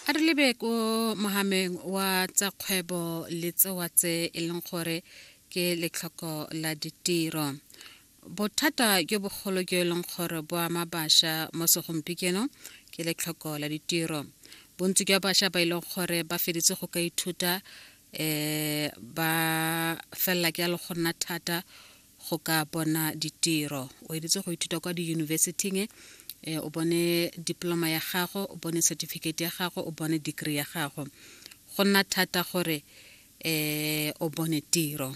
a re lebe ko mogameng wa tsa kgwebo le tsewa tse e leng gore ke letlhoko la ditiro bothata jo bogolo jo e leng gore bo ama bašwa mo segompieno ke letlhoko la ditiro bontsi jwa bašwa ba e leng gore ba feditse go ka ithuta um ba felela ke ya le go nna thata go ka bona ditiro o editse go ithuta kwa diyunibesiting e eh, o bone diploma ya gago o bone certificate ya gago o bone degree ya gago go nna thata gore eh o bone tiro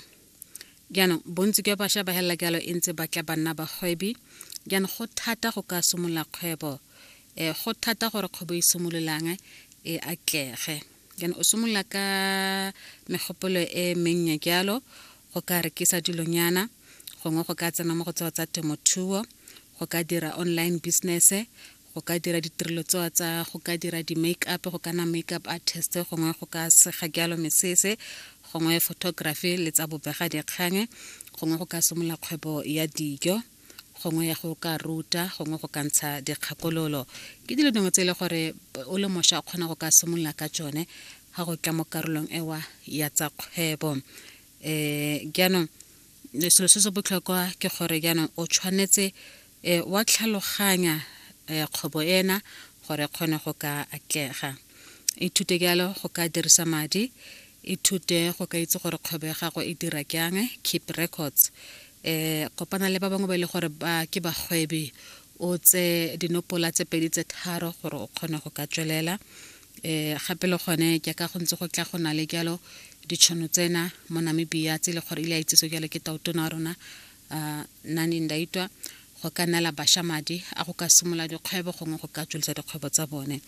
jaanong bontsi jwa bašwa ba helela jalo e ntse ba tla ba nna bagwebi jaanong go thata go ka simolola kgwebo um go thata gore kgwebo e simololang e atlege Jaanong o simolola ka megopolo e mennye jalo, go ka rekisa dilonyana, gongwe go ka tsena mo go tsewa tsa temothuo, go ka dira online business-e, go ka dira ditirelo tsewa tsa go ka dira di-make up, go ka nna make up artist, gongwe go ka sega jalo mesese, gongwe photography le tsa bobega dikgang, gongwe go ka simolola kgwebo ya dijo. gongwe ya go ka ruta gongwe go ka ntsha dikgakololo ke dilo dingwe tse e le gore o le mošwa o kgona go ka simolola ka tsone ga go tla mo karolong ewa ya tsa kgwebo um jaanong selo se se botlhokwa ke gore jaanong o tshwanetse um wa tlhaloganya um kgwebo ena gore kgone go ka atlega ithute jalo go ka dirisa madi Ithute go ka itse gore kgwebo ya gago e dira kyang, keep records. E kopana le ba bangwe ba e le gore ba ke bagwebi o tse dinopola tse pedi tse tharo gore o kgone go ka tswelela. E gape le gone ke ka go ntse go tla go na le jalo ditšhono tsena mo Namibia tse e le gore ile a itsese jalo ke tautona wa rona uh, Nandi Ndaitwa go ka nela basha madi a go ka simola dikgwebo gongwe go ka tswelisa dikgwebo tsa bone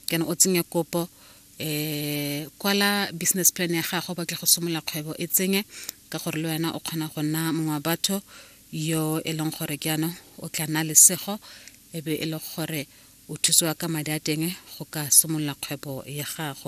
kana o tsenye kopo eh kwala business plan ya gago ba ke go simolola kgwebo e tsenye ka gore le wena o kgona go nna mongwe wa batho yo e leng gore ke ano o tla nna lesego e be e le gore o thusiwa ka madi a teng go ka simolola kgwebo ya gago